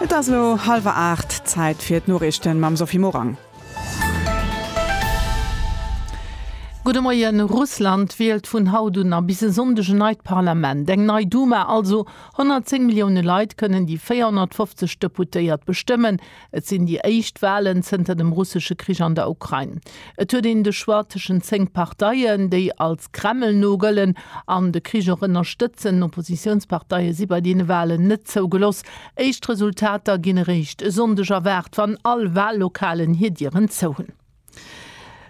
Et ass elo hallwer 8, Zäit fir d'Noriichten mam Sophie Morang. Gudde Moien, Russland wielt vun haut un a bis e Sonndeg en neit Parlament, eng nei Duma also. 110 Millioune Leit kënnen déi 450 Deputéiert bestëmmen. Et sinn déi éischt Walen zënter dem russesche Krich an der Ukrain. Et huet een de Choix tëschent zéng Parteien, déi als Kreml no gëllen an de Krich och ënnerstëtzen. Oppositiounsparteie si bei deene Walen net zougelooss. Éischt Resultater ginn eréischt e Sonndeg erwaart, wann all Wallokalen hir Dieren zou hunn.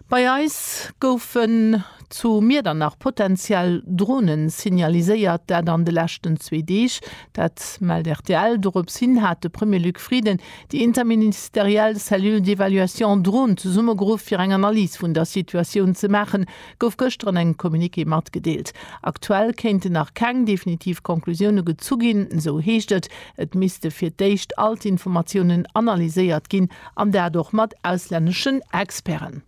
Bei eis goufen zu Miedernach potentiell Drone signaliséiert, dat an de leschten zwee Deeg. Dat mellt rtl. Dorops hin hat de Premier Luc Frieden déi interministeriell Cellule d'évaluation Drone zesummegeruff, fir eng Analys vun der Situatioun ze maachen, gouf gëschter an engem Communiqué matgedeelt. Aktuell kéinten nach keng definitiv Conclusioune gezu ginn, esou heescht et. Et misste fir d'éischt all d'Informatiounen analyséiert ginn, an dat och mat auslänneschen Experten.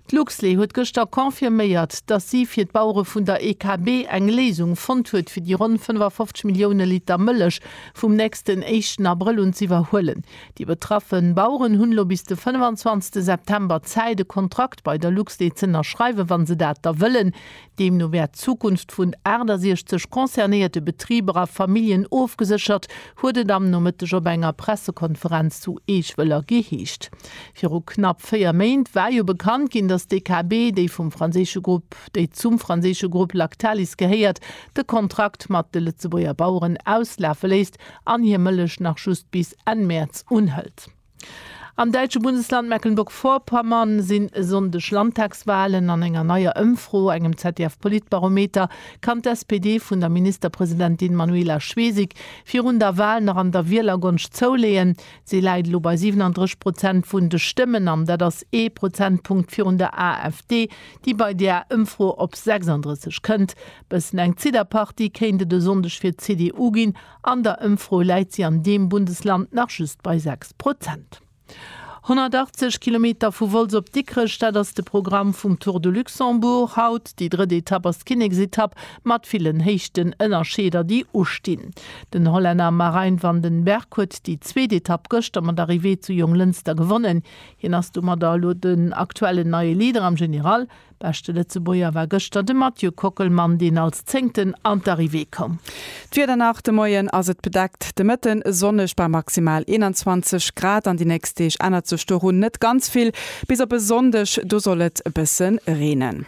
D'Luxlait huet gëschter confirméiert, datt si fir d'Bauere vun der EKB eng Léisung fonnt huet, fir déi ronn 55 Millioune Liter Mëllech vum nächsten éischten Abrëll un z'iwwerhuelen. Déi betraffe Baueren hunn elo bis de 25 September Zäit, e Kontrakt bei der LuxDe z'ënnerschreiwen, wa se dat da wëllen. Deemno wär d'Zukunft vun 68 concernéierte Betriber a Familljen ofgeséchert, huet et am Nomëtteg op enger Pressekonferenz zu Eechwëller geheescht. Viru knapp véier Méint war jo bekannt ginn, datt d'EKB, déi vum franséische Grupp, déi zum franséische Grupp Lactalis gehéiert, de Kontrakt mat de Lëtzebuerger Baueren auslafe léisst an hir Mëllech nach just bis Enn Mäerz unhëlt. Am däitsche Bundesland Mecklenburg-Vorpommern sinn e Sonndeg Landtagswalen. An enger neier Ëmfro, engem ZDF-Politbarometer, kann d'SPD vun der Ministerpresidentin Manuela Schwesig virun der Wal nach an der Wielergonscht zouleeën. Si läit elo bei 37 Prozent vun de Stëmmen an dat ass ee Prozentpunkt virun der AfD, déi bei där Ëmfro op 36 kënnt. Bëssen eng Zidderpartie kéint et e Sonndeg fir d'CDU ginn. An der Ëmfro läit si an deem Bundesland nach just bei 6 Prozent. 180 Kilometer vu Wolz op Dikrech, dat ass de Programm vum Tour de Luxembourg haut. Déi drëtt Etapp ass d'Kinneksetapp mat villen Héichtenënnerscheeder, déi ustinn. Den Hollänner Marijn van den Berg huet déi zweet Etapp gëschter mat Arrivée zu Jonglënster gewonnen. Hien ass domadder elo den aktuellen neie Leader am General. Beschte Lëtzebuerger war gëschter de Mathieu Kockelmann, deen als Zéngten an d'Arrivée koum. D'Wieder nach, De Moien ass et bedeckt, de Mëtte sonneg bei maximal 21 Grad. An déi nächst Deeg ännert sech doru net ganz vill, bis op e Sonndeg, do soll et e bësse reenen.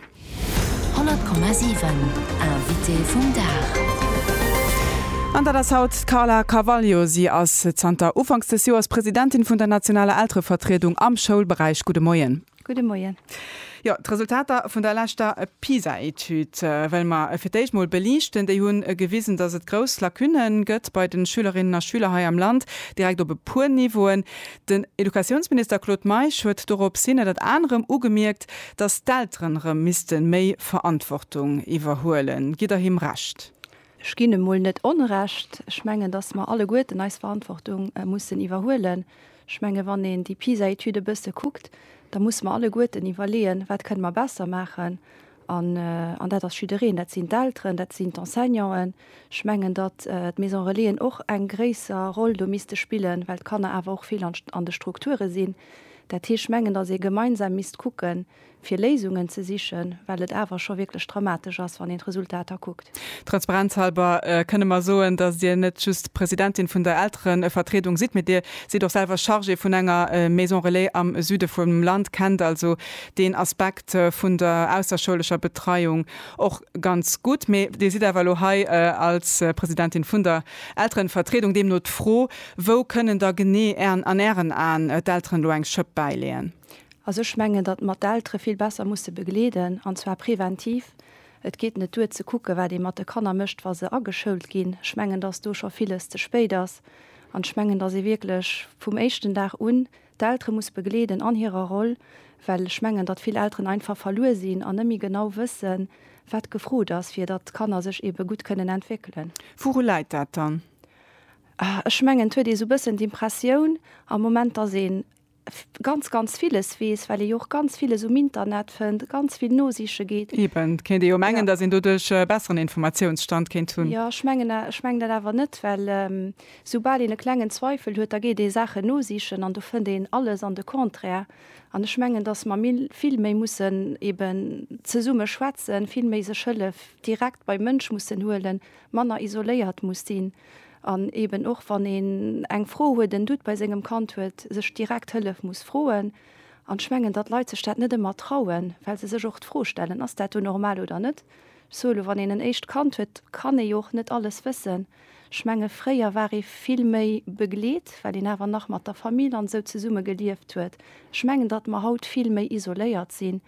100,7 Invité vum Dag. An dat ass haut d'Carla Carvalho. Si ass zanter Ufanks des Joers Presidentin vun der nationaler Elterevertriedung am Schoulberäich. Gudde Moien. Gudde Moien. Jo, d'Resultater vun der leschter PISA-Etüd wëlle mer fir d'éischt mol beliichten. Déi hunn gewisen, dass et grouss Lacunne gëtt bei de Schülerinnen a Schüler hei am Land, direkt op e puer Niveauen. Den Educatiounsminister Claude Meisch huet doropshin ënnert anerem ugemierkt, dass d'Elteren erëm misste méi Verantwortung iwwerhuelen. Gitt Der him Recht? Ech ginn emol net Onrecht. Ech mengen, dass mer alleguerten eis Verantwortung mussen iwwerhuelen. Ech menge wann een déi PISA-Etüd e bësse kuckt, da musse mer alleguerten iwwerleeën, wat kënne mer besser maachen. An dat ass jiddereen, dat sinn d'Elteren, dat sinn d'Enseignanten. Ech mengen, datt d'Maisons relaisen och eng gréisser Roll do misste spillen, well d'Kanner awer och vill an de Strukture sinn. Dat heescht, ech mengen, dass ee gemeinsam misst kucken, fir Léisungen ze sichen, well et awer scho wierklech dramatesch ass, wann een d'Resultater kuckt. Transparenzhalber kënne mer soen, dass Dir net just Presidentin vun der Elterevertriedung sidd, mee Dir sidd och selwer Chargée vun enger Maison Relais am Süde vum Land, kennt also deen Aspekt vun der ausserschoulescher Betreiung och ganz gutt. Mee Dir sidd awer elo hei als Presidentin vun der Elterenvertriedung. Deemno d'Fro, Wou kënnen da genee an Ären Aen d'Elteren elo eng Schëpp bäileeën? Also ech mengen, datt mer d'Eltere vill besser musse begleeden, an zwar preventiv. Et geet net duer ze kucken, wat ee mat de Kanner mécht, wa se ageschoult ginn. Ech mengen, datt do scho villes ze spéit ass. An ech mengen, datt ee wierklech vum éischten Dag un d'Eltere muss begleeden an hirer Roll, well ech mengen, datt vill Elteren einfach verluer sinn an net méi genau wëssen, wat gefrot ass, fir datt d'Kanner sech eebe gutt kënnen entwéckelen. Wouru läit dat dann? Ech mengen, et huet ee sou e bëssen d'Impressioun am Moment, datt een ganz ganz villes weess, well ee jo och ganz villes um Internet fënnt, ganz vill nosiche geet. Eben, kéint ee jo mengen, datt een doduerch e besseren Informatiounsstand kéint hunn. Jo, ech mengen, ech mengen dat awer net, well soubal een e klengen Zweifel huet, da geet ee Saachen nosichen an do fënnt een alles an de Contraire. An ech mengen, datt mer méi, vill méi mussen eben zesumme schwätzen, vill méi sech Hëllef direkt beim Mënsch mussen huelen, manner isoléiert muss sinn. An eben och wann een eng Fro huet, en Doute bei sengem Kand huet, sech direkt Hëllef muss froen. An ech mengen, datt Leit sech dat net ëmmer trauen, well se sech och d'Fro stellen, Ass dat do normal oder net? Ech soe lo, wann een en éischt Kand huet, kann ee jo och net alles wëssen. Ech menge fréier war ee vill méi begleet, well een awer nach mat der Famill an esou zesumme gelieft huet. Ech mengen, datt mer haut vill méi isoléiert sinn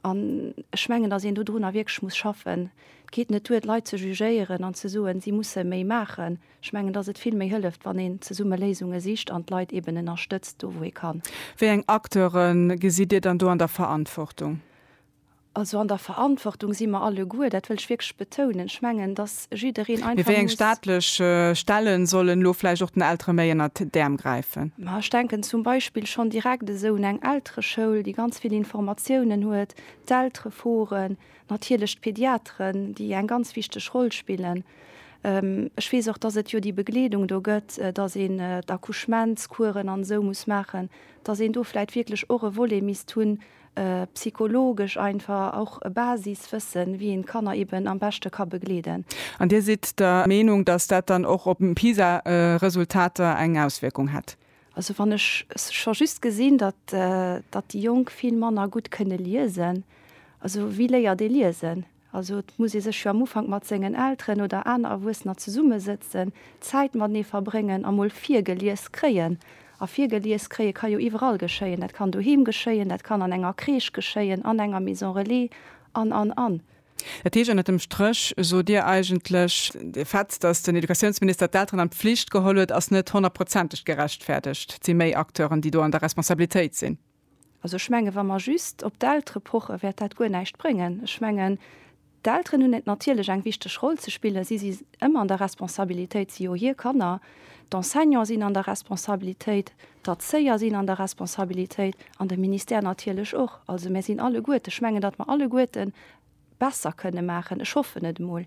An ech mengen, dass een dodrunner wierklech muss schaffen. Et geet net duer, d'Leit ze jugéieren an ze soen, si musse méi maachen. Ech mengen, dass et vill méi hëlleft, wann een zesumme Léisunge sicht an d'Leit eeben ënnerstëtzt do, wou ee kann. Wéi eng Acteure gesitt Dir dann do an der Verantwortung? Also an der Verantwortung si mer alleguer, dat wëll ech wierklech betounen. Ech mengen, dass Mee wéi eng staatlech Stelle sollen elo vläicht och den Eltere méi ënnert d'Äerm gräifen? Ma ech denken zum Beispill schonn direkt esou un eng Eltereschoul, déi ganz vill Informatiounen huet, d'Eltereforen, natierlech d'Pediateren, déi eng ganz wichteg Roll spillen. Ech weess och, datt et jo déi Begleedung do gëtt, datt een d'Accouchementscoursen an esou muss maachen, datt een do vläicht wierklech och e Volet misst hunn, psychologesch einfach och e Basiswëssen, wéi een d'Kanner eben am beschte ka begleeden. An Dir sidd der Meenung, datt dat dann och op d'PISA-Resultater eng Auswierkung hätt? Also wann ech scho just gesinn, datt, datt déi Jonk vill manner gutt kënne liesen, also wie léiert ee liesen? Also et muss ee sech jo am Ufank mat sengen Elteren oder aner Erwuessener zesummesëtzen, Zäit matenee verbréngen a mol virgelies kréien. A virgelies kréie ka jo iwwerall geschéien. Dat kann doheem geschéien, dat kann an enger Crèche geschéien, an enger Maison relais an, an, an. Dat heescht ënnert dem Stréch sot Dir eigentlech, de Fait, datt den Educatiounsminister d'Elteren an d'Flicht geholl huet, ass net honnertprozenteg gerechtfäerdegt. Et si méi Acteuren, déi do an der Responsabilitéit sinn. Also ech menge wa mer just op d'Eltere poche wäert dat guer näischt bréngen. Ech mengen d'Elteren hunn et natierlech eng wichteg Roll ze spillen. Si si ëmmer an der Responsabilitéit, si jo hir Kanner. D'Enseignanten sinn an der Responsabilitéit, d'Erzéier sinn an der Responsabilitéit an de Ministère natierlech och. Also mär sinn alleguerten, ech mengen datt mer alleguerten, besser kënne maachen, ech hoffen et emol.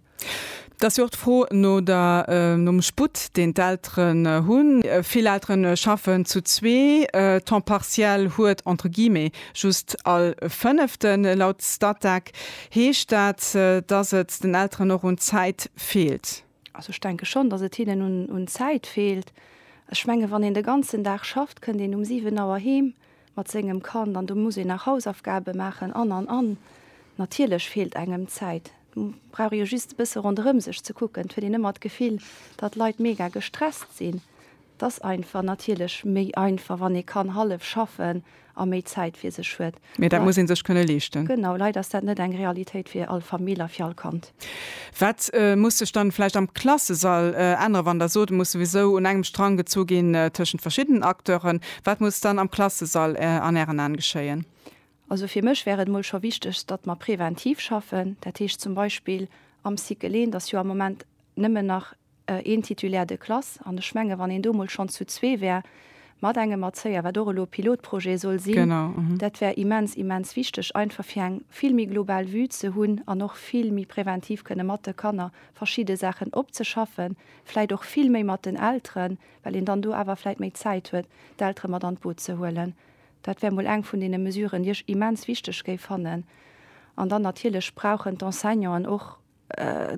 Et ass jo och d'Fro no der, nom Sputt, deen d'Elteren hunn. Vill Eltere schaffen zu zwee, Temps partiel huet entre guillemets just all Fënneften. Laut Statec heescht dat, dass et den Elteren och un Zäit feelt. Also ech denke schonn, dass et hinnen un Zäit feelt. Ech menge wann een de ganzen Dag schafft, kënnt een um 7 Auer heem, mat sengem Kand an do muss een nach Hausaufgabe maachen an an an natierlech feelt engem d'Zäit. Brauch ee jo just e bësse ronderëm sech ze kucken, et huet een ëmmer d'Gefill, datt d'Leit mega gestresst sinn. Et ass einfach natierlech méi einfach, wann ee kann hallef schaffen a méi Zäit fir sech huet. Mee dat muss ee sech kënne leeschten. Genau, leider ass dat net eng Realitéit fir all Famill a fir all Kand. Wat muss sech dann vläicht am Klassesall änneren, wann Der sot, et muss souwisou un engem Strang gezu ginn tëschent verschiddenen Acteuren? Wat muss dann am Klassesall an Ären Aen geschéien? Also fir mech wär et emol scho wichteg, datt mer preventiv schaffen. Dat heescht zum Beispill am Cycle 1 ass jo am Moment nëmmen nach een Titulaire de classe, an ech menge wann een do mol schonn zu zwee wär mat engem Erzéier, wat och elo Pilotprojet soll sinn, dat wär immens, immens wichteg, einfach fir eng vill méi global Vue ze hunn an och vill méi präventiv kënne mat de Kanner verschidde Saachen opzeschaffen, vläicht och vill méi mat den Elteren, well een dann do awer vläicht méi Zäit huet, d'Eltere mat an d'Boot ze huelen. Dat wär mol eng vun deene Mesuren, déi ech immens wichteg géif fannen. An dann natierlech brauchen d'Enseignanten och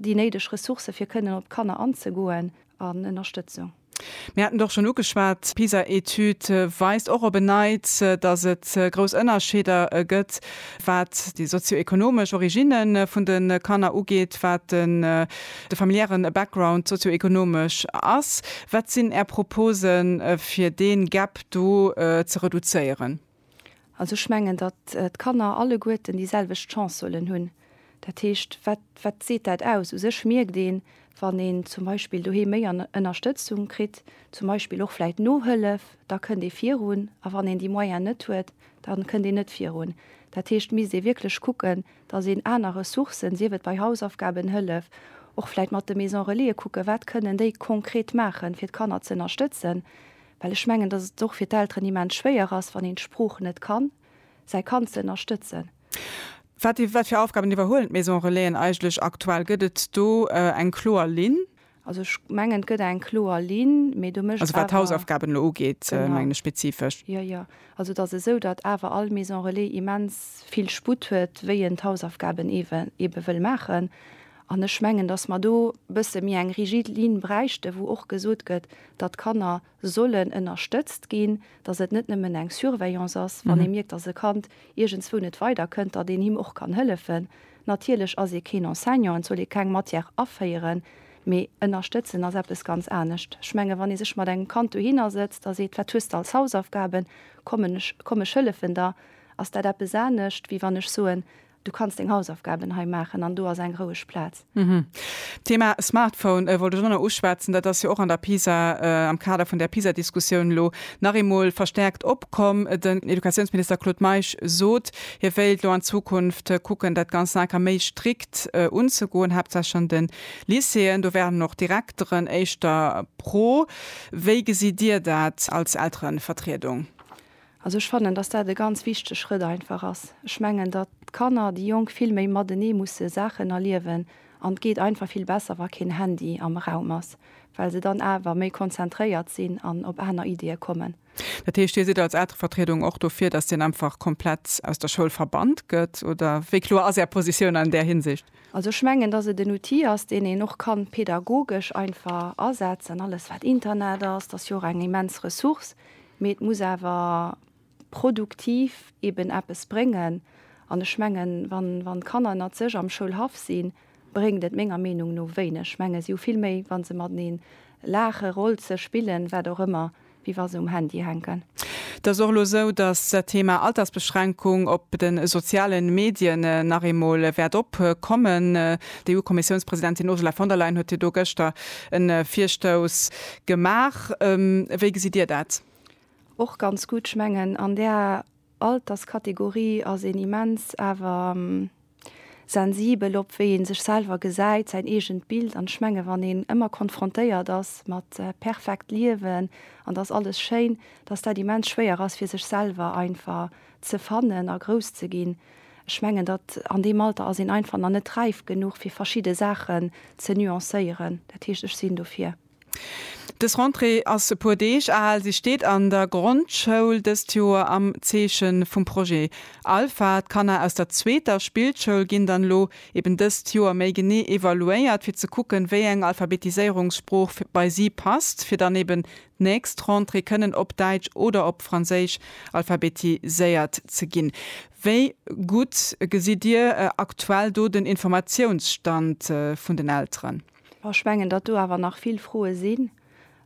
déi néideg Ressourcë fir kënnen op d'Kanner anzegoen an Ënnerstëtzung. Mir haten et och schonn ugeschwat, d'PISA-Etüd weist och op en Neits, datt et grouss Ënnerscheeder gëtt, wat déi sozio-ekonomesch Originne vun de Kanner ugeet, wat de familiäre Background sozio-ekonomesch ass. Wat sinn Är Propose fir dee Gap do ze reduzéieren? Also ech mengen, datt d'Kanner alleguerten déi selwecht Chance sollen hunn. Dat heescht, wat, wat seet dat aus? U sech mierkt een, wann een zum Beispill doheem méi Ënnerstëtzung kritt, zum Beispill och vläicht Nohëllef, da kënnt ee virun. A wann een déi Moyen net huet, da kënnt een net virun. Dat heescht, misst ee wierklech kucken, datt een aner Ressourcen, sief et bei Hausaufgabenhëllef, och vläicht mat de Maison-relaise kucken, wat kënnen déi konkret maachen, fir d'Kanner z'ënnerstëtzen. Well ech mengen, dass et och fir d'Elteren immens schwéier ass, wann een d'Sprooch net kann, säi Kand ze ënnerstëtzen. Wat fir Aufgaben iwwerhuelen d'Maison Relaisen eigentlech aktuell? Gëtt et do eng kloer Linn? Also ech mengen, et gëtt eng kloer Linn, mee do mécht awer. Also wat d'Hausaufgaben elo ugeet, mengen ech spezifesch. Jo, jo. Also et ass esou, datt awer all Maison Relais immens vill Sputt huet, wéi en d'Hausaufgaben eebe wëll maachen. An ech mengen, datt mer do e bësse méi eng rigid Linn bräichten, wou och gesot gëtt, datt d'Kanner sollen ënnerstëtzt ginn, datt et net nëmmen eng Surveillance ass, wann ee mierkt, datt e Kand iergendswou net weider kënnt, datt een him och kann hëllefen. Natierlech ass ee keen Enseignant, et soll ee keng Matière aféieren, mee ënnerstëtzen ass eppes ganz anescht. Ech menge wann ee sech mat engem Kand dohinner sëtzt a seet, wat hues de als Hausaufgaben, kommen ech, komm ech hëllefen der, ass dat eppes anescht, wéi wann ech soen, Du kanns deng Hausaufgaben hei maachen an do ass eng roueg Plaz. D'Thema Smartphone wollt ech och nach uschwätzen. Dat ass jo och an der Pisa, am Kader vun där Pisa-Diskussioun elo nach eemol verstärkt opkomm. Den Educatiounsminister Claude Meisch sot, hie wéilt elo an Zukunft kucken, dat Ganzt nach eng Kéier méi strikt unzegoen, haaptsächlech an de Lycéeën. Do wären och d'Direkteren éischter pro. Wéi gesitt Dir dat als Elterevertriedung? Also ech fannen, datt dat e ganz wichtege Schrëtt einfach ass. Ech mengen, datt d'Kanner, déi Jonk vill méi matenee musse Saachen erliewen an et geet einfach vill besser, wa keen Handy am Raum ass, well se dann awer méi konzentréiert sinn an op aner Iddie kommen. Dat heescht, Dir sidd als Elterevertriedung och dofir, datt deen einfach komplett aus der Schoul verbannt gëtt, oder wéi kloer ass Är Positioun an där Hinsicht? Also ech mengen, datt et en Outil ass, deen een och kann pedagogesch einfach asetzen. Alles wat Internet ass, dat ass jo och eng immens Ressource. Mee et muss awer produktiv eben eppes bréngen. An ech mengen, wann d'Kanner ënnert sech am Schoulhaff sinn, bréngt et menger Meenung no wéineg. Ech mengen, si hu vill méi, wa se mateneen laachen, rolzen, spillen, wat och ëmmer, wéi wa se um Handy hänken. Et ass och elo esou, datt d'Thema Altersbeschränkung op de soziale Medien nach eemol wäert opkommen. D'EU-Kommissiounspresidentin Ursula von der Leyen huet jo do gëschter e Virstouss gemaach. Wéi gesitt Dir dat? Och ganz gutt. Ech mengen, an där Alterskategorie ass een immens awer sensibel op wéi ee sech selwer gesäit, säin eegent Bild. An ech menge wann een ëmmer konfrontéiert ass mat perfekt Liewen an et ass alles schéin, datt dat immens schwéier ass fir sech selwer einfach ze fannen a grouss ze ginn. Ech mengen, datt an deem Alter ass een einfach nach net räif genuch fir verschidde Saachen ze nuancéieren. Dat heescht, ech sinn dofir. Dës Rentrée ass e puer Deeg al. Si steet an der Grondschoul dëst Joer am Zeeche vum Projet Alpha. D'Kanner aus der zweeter Spillschoul ginn dann elo eben dëst Joer méi genee evaluéiert, fir ze kucken, wéi eng Alphabetiséierungssprooch bei si passt, fir dann eben d'nächst Rentrée kënnen op Däitsch oder op Franséisch alphabetiséiert ze ginn. Wéi gutt gesitt Dir aktuell do den Informatiounsstand vun den Elteren? Ech mengen, datt do awer nach vill Froe sinn.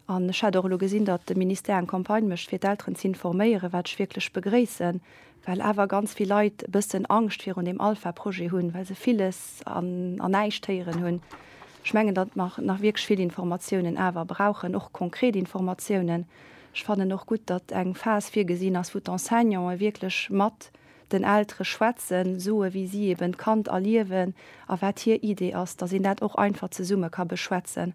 An ech hat och elo gesinn, datt de Ministère eng Campagne mécht, fir d'Elteren z'informéieren, wat ech wierklech begréissen, well awer ganz vill Leit e bëssen Angscht virun deem Alpha-Projet hunn, well se villes an an näischt héieren hunn. Ech mengen, datt mer nach wierklech vill Informatiounen awer brauchen, och konkret Informatiounen. Ech fannen och gutt, datt eng Phas virgesinn ass, wou d'Enseignanten wierklech mat den Eltere schwätzen, soe wéi si eben d'Kand erliewen a wat hir Idee ass, datt een dat och einfach zesumme ka beschwätzen.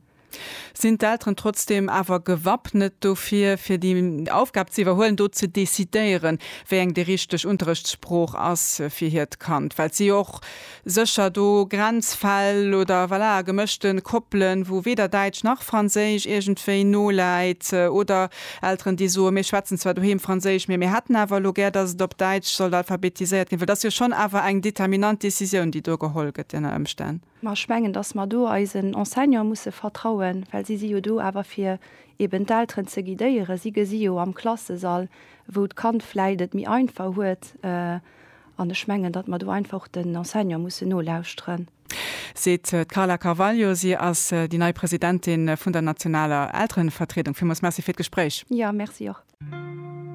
Sinn d'Elteren trotzdeem awer gewappnet dofir, fir déi Aufgab ze iwwerhuelen, do ze decidéieren, wéi eng déi richteg Unterrechtssprooch ass fir hiert Kand, well si jo och, Sécher do Grenzfäll oder, voilà, gemëschten Koppelen, wou weder Däitsch nach Franséisch iergendwéi noläit, oder Elteren, déi soen, mir schwätzen zwar doheem Franséisch, mee mir hätten awer elo gär, dass et op Däitsch sollt alphabetiséiert ginn. Well dat ass jo schonn awer eng determinant Décisioun, déi do geholl gëtt ënner Ëmstänn. Mä ech mengen, dass mer do eisen Enseignanten musse vertrauen, well si si jo do awer fir eben d'Elteren ze guidéieren. Si gesi jo am Klassesall, wou d'Kand vläicht et méi einfach huet, An ech mengen, datt mer do einfach och den Enseignante mussen nolauschteren. Seet d'Carla Carvalho. Si ass déi nei Presidentin vun der nationaler Elterenvertriedung. Villmools Merci fir d'Gespréich. Jo, Merci och.